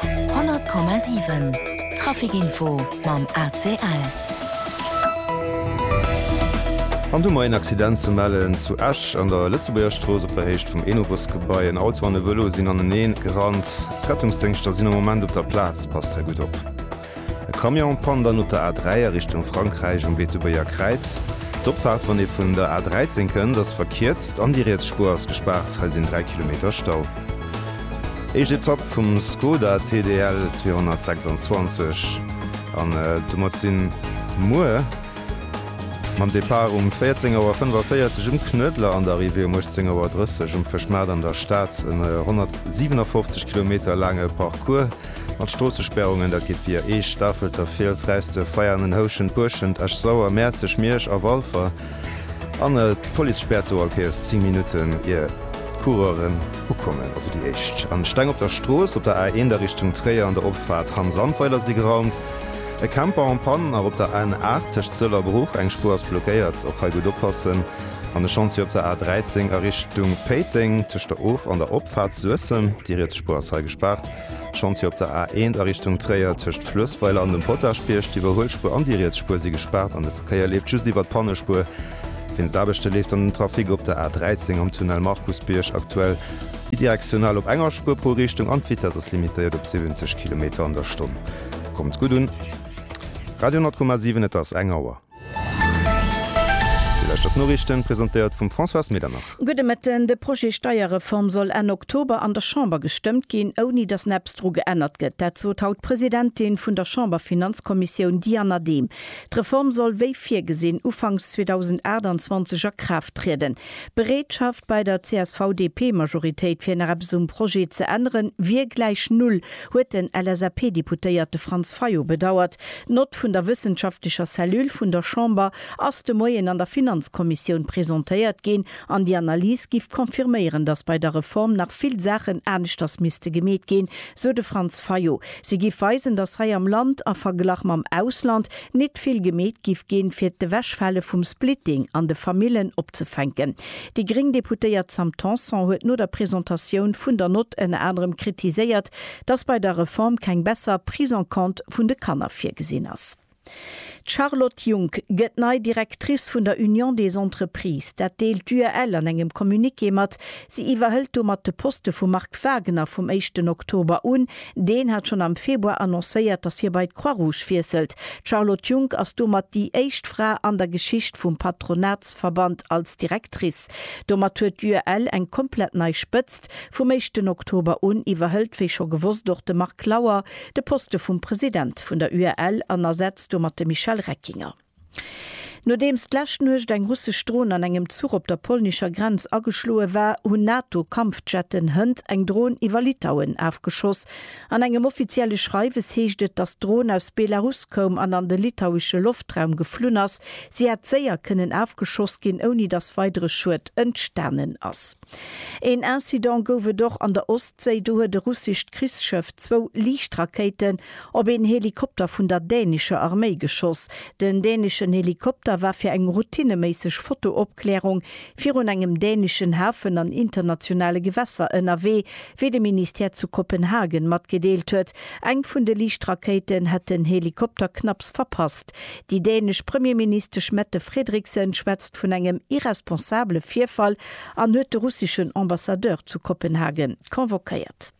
100,7 Trafic Info mam ACL. An domat een Accident ze mellen zu Esch an der Lëtzebuerger Strooss op der Héicht vum Enobusgebai. En Auto an e Vëlo sinn anenee gerannt. D'Rettungsdéngschter sinn am Moment op der Plaz, passt hei gutt op. E Camion en Panne dann op der A3 a Richtung Frankräich um Beetebuerger Kräiz. D'Opfaart wann ee vun der A13 kënnt ass verkierzt an déi riets Spuer ass gespaart, hei sinn 3 Kilometer Stau. Éischt Etapp vum Skoda TDL 226 an domat si muer mam Depart um 14 Auer 45 um Knuedler an der Arrivée um 18 Auer 30 um Fëschmaart an der Stad en 157 Kilometer laange Parcours. Mat Stroossesperrungen, dat geet via Eech, Stafelter, Fiels, Räisduerf, Veianen, Houschent, Buerschent, Esch Sauer, Mäerzeg, Miersch a Walfer an d'Police späert do all Kéiers 10 Minutten ier d'Coureuren ukommen. Also déi éischt an d'Steng op der Strooss op der A1 a Richtung Tréier an der Opfaart Hamm Sandweiler si geraumt, e Camper en Panne nach op der N8 tëscht Sëll a Bruch, eng Spuer ass blockéiert, och hei gutt oppassen, an e Chantier op der A13 a Richtung Péiteng tëscht der Of an der Opfaart Suessem, déi riets Spuer ass hei gespaart. D'Chantiere op der A1 a Richtung Tréier tëscht Fluessweiler an dem Potaschbierg, d'Iwwerhuelspuer an déi riets Spuer si gespaart an de Verkéier leeft just iwwer d'Pannespuer. Wéinst Aarbechte leeft dann den Trafic op der A13 am Tunnel Markusbierg aktuell bidirektional op enger Spuer pro Richtung an d'Vitess ass limitéiert op 70 Kilometer an der Stonn. Kommt gutt un! Radio 10,7 Et ass eng Auer. Déi leschter d'Noriichten, presentéiert vum Françoise Medernach. Gudde Mëtten. De Projet Steierreform soll Enn Oktober an der Chamber gestëmmt ginn, ouni datt näpps dru geännert gëtt. Dat sot haut d'Presidentin vun der Chamberfinanzkommissioun Diana Dehm. D'Reform soll wéi virgesinn ufanks 2028 a Kraaft trieden. D'Bereetschaft bei der CSV-DP-Majoritéit fir nach eppes um Projet ze änneren, wier gläich null. huet den LSAP-Deputéierte Franz Fayot bedauert. D'Nott vun der wëssenschaftlecher Cellule vun der Chamber ass de Moien an der Finanzkommissioun presentéiert ginn an déi Analys géif confirméieren, datt bei der Reform nach vill Saachen aneschters misste gemeet ginn, sou de Franz Fayot. Si géif weisen, datt hei am Land, a Verglach mam Ausland, nit vill gemeet géif ginn, fir d'Ewechfale vum Splitting an de Famillen opzefänken. Déi gréng Deputéiert Sam Tanson huet no der Presentatioun vun der Nott ënner anerem kritiséiert, datt bei der Reform keng besser Prise en compte vun de Kanner virgesinn ass. D'Charlotte Junck gëtt nei Directrice vun der Union des Entreprises. Dat deelt d'UEL an engem Communiqué mat. Si iwwerhëlt domat de Poste vum Marc Wagener vum éischten Oktober un, Deen hat schonn am Februar annoncéiert, datt hie bei d'Croix-Rouge wiesselt. D'Charlotte Junck ass domat déi éischt Fra an der Geschicht vum Patronatsverband als Directrice. Domat huet d'UEL eng komplett nei Spëtzt. Vum éischten Oktober un iwwerhëlt, wéi scho gewosst, och de Marc Lauer de Poste vum President vun der UEL an ersetzt domat de Michel Reckinger. Nodeems d'lescht Nuecht eng russesch Dron an engem Zuch op der polnischer Grenz ageschloe war, hunn NATO-Kampfjetten hënt eng Dron iwwer Litauen afgeschoss. An engem offizielle Schreiwes heescht et, datt d'Dron aus Belarus koum an an de litauesche Loftraum geflunn ass. Si hätt séier kënnen afgeschoss ginn, ouni datt weidere Schued entstanen ass. Een Incident gouf et och an der Ostséi. Do huet e russescht Krichsschëff zwou Liichtrakéiten op een Helikopter vun der dänischer Arméi geschoss. Den däneschen Helikopter war fir eng routineméisseg Fotoopklärung virun engem dänischen Hafen an internationale Gewässer ënnerwee, wéi de Ministère zu Kopenhagen matgedeelt huet. Eng vun de Liichtrakéiten hätt den Helikopter knapps verpasst. Déi dänesch Premierministesch Mette Frederiksen schwätzt vun engem irresponsabele Virfall an huet de russischen Ambassadeur zu Kopenhagen convoquéiert.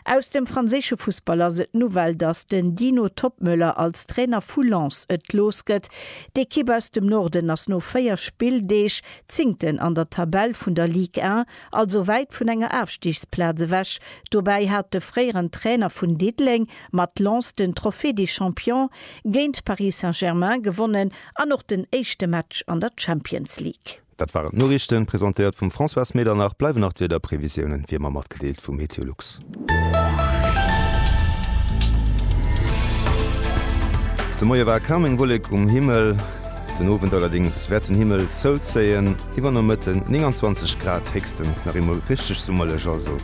Aus dem franséische Fussball ass et d'Nouvelle, datt den Dino Toppmöller als Trainer vu Lens et looss gëtt. D'Ekipp aus dem Norden ass no 4 Spilldeeg Zéngten an der Tabell vun der Ligue 1, also wäit vun enger Aafstigsplaz ewech. Dobäi hat de fréieren Trainer vun Diddeleng mat Lens den Trophée des Champions géint Paris Saint-Germain gewonnen an och den éischte Match an der Champions League. Dat waren d'Noriichten, presentéiert vum Françoise Medernach. Bleiwen nach d'Wiederprevisiounen, wéi ëmmer, matgedeelt vu MeteoLux. De Moie war kaum eng Wollek um Himmel, den Owend allerdéngs wäert den Himmel zouzéien. Iwwer Nomëtten 29 Grad, héchstens nach eemol richteg summerlech also.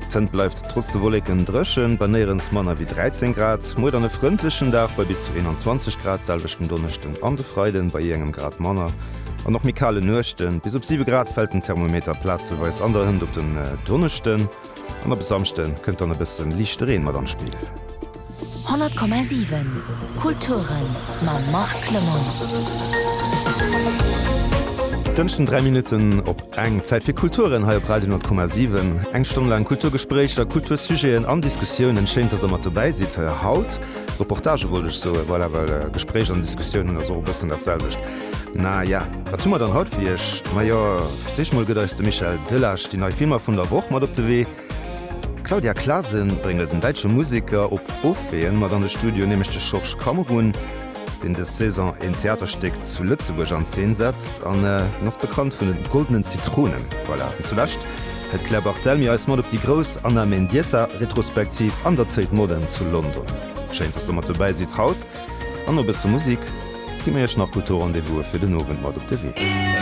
D'Zënt bleift trotz de Wolleken dréchen, bei néierens manner wéi 13 Grad. Muer dann e frëndlechen Dag bei bis zu 21 Grad, selwecht den Donneschden an de Freiden, bei jee engem Grad manner. An och méi kale Nuechten. Bis op 7 Grad fält den Thermometer plazeweis an der Hënt op den Donneschden an op e Samschde kënnt dann e bësse liichte Reen mat an d'Spill. 100,7 Kulture mam Marc Lemmel. Dënschden 3 Minutten op eng. Zäit fir Kulturen hei op Radio 10,7. Eng Stonn laang Kulturgespréicher, Kultursujeten an Diskussiounen. Schéin, dass Der mat dobäi sidd. Haut Reportage wollt ech soe, voilà, well Gespréich an Diskussiounen ass och e bëssen dat selwecht. Na ja, wat hu mer dann haut fir Iech? Majo, d'éscht mol gëtt eis de Michel Delage déi nei Filmer vun der Woch mat op de Wee. D'Claudia Clasen bréngt eis en däitsche Museker op Opween mat an de Studio, nämlech de Schorsch Kammerun, deen des Saison een Theaterstéck zu Lëtzebuerg an Zeen setzt an en ass bekannt vun den Goldenen Zitronen. Voilà, an zulescht hält d'Claire Barthelmy eis mat op déi grouss Anna Mendieta-Retrospektiv an der Tate Modern zu London. Schéin, dass der mat dobäi sidd haut. An no bësse Musik gi mir iech nach kultur Rendez-vouse fir den Owend mat op de Wee.